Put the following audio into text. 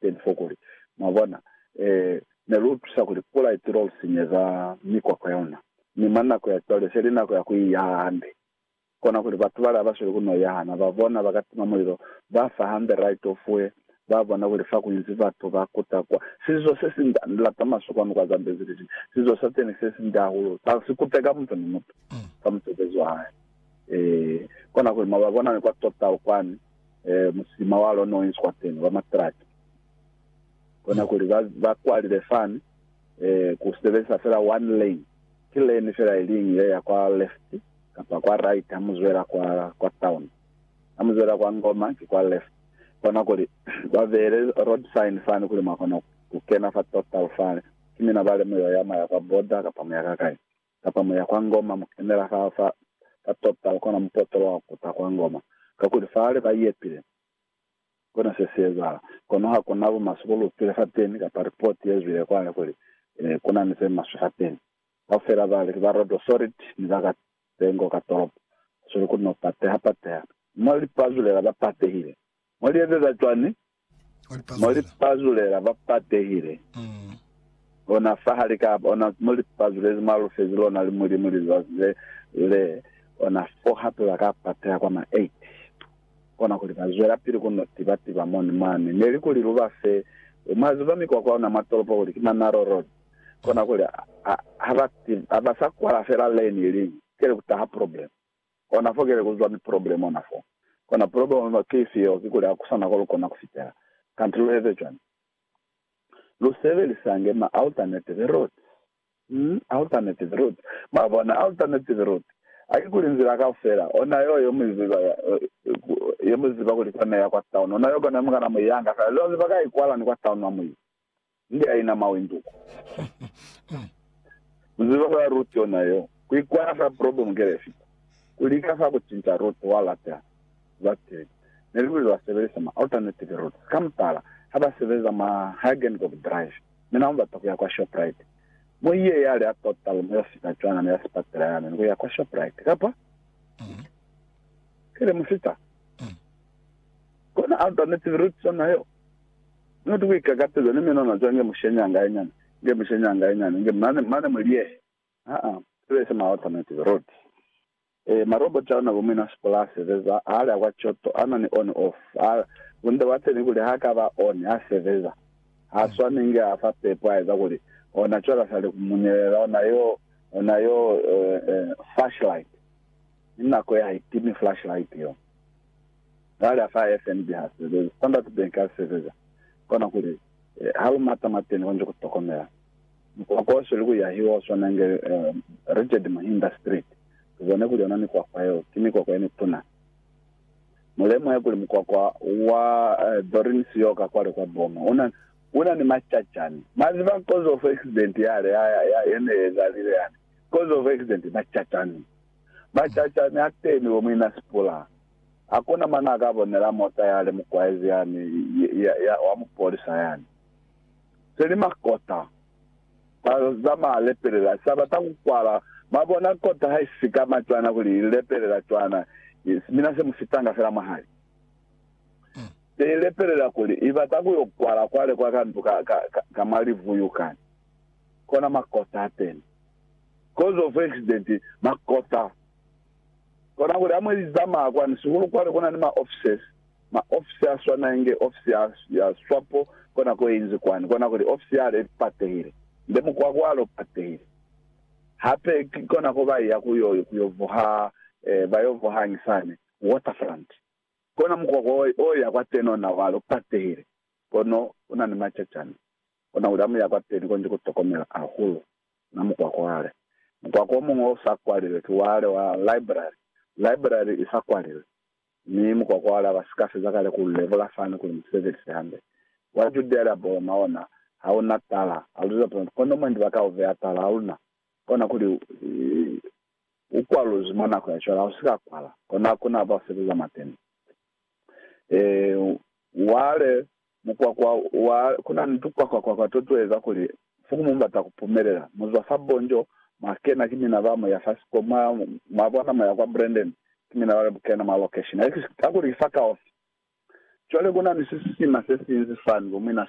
Teni fo kuli, mwabona, e, ne lu tusa kuli pula itilo lu sinyeza mikwakwa ya luna. Mi mwa nako ya cwale se li nako ya ku i yaha hande. Kona kuli batu bale haba sweli ku no yaha na, ba bona, ba ka tima mulilo, ba fa hande right of way, ba bona kuli fa ku inzi batu ba kuta kwa. Sizo se si nda, ni lata maswe kwanu kwa Zambezi li li, sizo sa teni se si nda hahulu, sa si kuteka mutu ni mutu, fa musebezi wa hae. E, kona kuli mwa ba bona ni kwa Total kwani, musima wa lona u iswa teñi, wa matraki. Kona kuli ba, ba kwalile fani, ku sebezisa fela one lane. Ki lane fela iliñwi ye ya kwa left kapa kwa right ha mu zwela kwa, kwa town. Ha mu zwela kwa Ngoma, ki kwa left. Kona kuli ba beele road sign fani kuli mwa kona ku kena fa total fale. Ki mina ba le mu yo ya, mwa ya kwa border kapa mu ya ka kai. kapa mu ya kwa Ngoma, mu kenela fa, fa, fa Total, kona mupotolo wa kuta kwa Ngoma, kakuli fale ba iyepile. Kona se si ezahala. Kono ha ku na bumaswe bo lu upile fateni, kapa ripoti ye zwile kwale kuli, Eh, ku na ni ze maswe fateni. Kaufela bali, ki ba Rodo Solid, ni ba ka tengo ka tolopo, ba sweli ku no pateha-pateha. Mwa lipazulela ba patehile. Mo li ezeza cwani? Mo li pazulela ba patehile, ona fa hali ka, ona, mo li pazulezi mwa lufezi lona li Mulimu lizazi le, le, ona fo hape ba ka pateha kwa ma eight. Kona kuli ba zwelapili ku no tiba tiba moni mwani. Neli kuli lu ba fe, mwa ziba mikwakwa ona mwa tolopo kuli ki ma narrow road. Kona kuli ha, ha ba, ha ba sa kwala fela lane iliñwi, keli ku taha problem. Kona fo kile kuziba ni problem ona fo. Kona problem mwa case yeo kikuli hakusana ko lukona kufitela. Kanti lueze cwani? Lusebelisange ma alternative routes. Umm alternative routes. Mwabona alternative routes. Hakikuli nzila kaufela ona yeo yemuiziba yemuziba kuli kona iya kwa town. Ona yeo kona yemukana muiyanga fela. Leo ziba ka ikwala ni kwa town mwa muiya. Nde ya ina mawi nduku. Muziba ba Ruth yona yo. Ku ikwala fa problem ke le fita. Ku lika fa ku cinca Ruth wa lata za TV. Ne li kuli ba sebelisa ma alternative routes. Ka mutala, ha ba sebeza mwa Hagengob Drive, mi na bata ku ya kwa Shoprite. Mo iye ya li a tota lume yo fita cwana mi ya sipatela ya memi ku ya kwa Shoprite. Kapa? Ki le mu fita. Kona alternative routes yona yo. Mutu ku ikakateza ni menwana zwa nge mushenyi anga inyani, nge mushenyi anga inyani, nge mane, mane mu liehe. Haa, sibe se ma automatic road. E, ma robot auna bo muina sipula a sebeza, ha alia kwa Kyoto, ana ni on off. Ha, bunde bwa teni kuli ha ka ba on, ha sebeza. Ha swani nge a fa pepo a eza kuli, ona cwale a sa li ku munyelela, ona yo, ona yo, e, e, flashlight. Ni nako ye ha itimi flashlight yo. Cwale ha sa FNB ha sebezi, Standard Bank ha isebeza, kona kuli, ha lu mata mwateni konji ku tokomela. Mukwakwa o sweli ku yahiwa o swana inge Richard Muhinda Street. Lu bone kuli yona mikwakwa yeo, ki mikwakwa ye mituna. Mu lemuhe kuli mukwakwa wa Doreen Sioka kwale kwa Boma, u na, u na ni macacani. Mwa ziba, cause of accident yale ya, ya, ya, ye ne ezalile yani. Cause of accident, macacani. Macacani a teni bo, muina sipula. Ha ku na mane a ka bonela mota ya li mu kwaezi yani ya, ya, wa mupolisa yani. Se li makota. Ba zamaya lepelela. Sa bata ku kwala. Mwa bona, kota ha i si ka ma cwana kuli i lepelela cwana, mina se mu fitanga fela mwahali. Se i lepelela kuli i bata ku yo kwala kwale kwa ka ndu ka, ka, ka, ka mwa livuyu kani. Kona makota ateni. Cause of accident, makota. Kona kuli ha mwe li zamaya kwani sihulu kwale kuna ni ma offices, ma ofisi a swana inge ofisi ya, ya swapo kona ko inzi kwani, kona kuli ofisi yale i patehile, nde mukwako wale u patehile. Hape ki kona ko ba iya ku yo, ku yo vuha, eh, ba yo vuha ngi sani Waterfront. Kona mukwako o, o ya kwateni ona wale u patehile, kono una ni macacana. Kona kuli ha mu ya kwateni konji ku tokomela hahulu. Na mukwa kwale. Mukwa ko muñwi o sa kwalilwe ki wale wa library. Library i sa kwalilwe. Mi mukwa kwale aba sika feza kale ku lebola fani kuli mu sebelise hande. Wa Judea lia Boloma ona ha u na tala. A lu ziba pulani. Kono mwendi ba ka u beya tala ha luna. Kona kuli u kwaluzwi mwa nako ya cwale. Ha u sika kwala. Kono hakuna ba u sebeza mwa teni. Ee, wale. Mukwakwa wa Kunani tukwakwakwa to tueza kuli Fukumu mbata kupumelela. Muzwa fa Bonjo, mwa kena ki mina ba Moya fa siko mwa, mwa bona moya kwa Brandon, ki mina ba kena mwa location. Hakuli ki fa kaufi. Cwale kunani sisiima sesinzi fani, bomwina.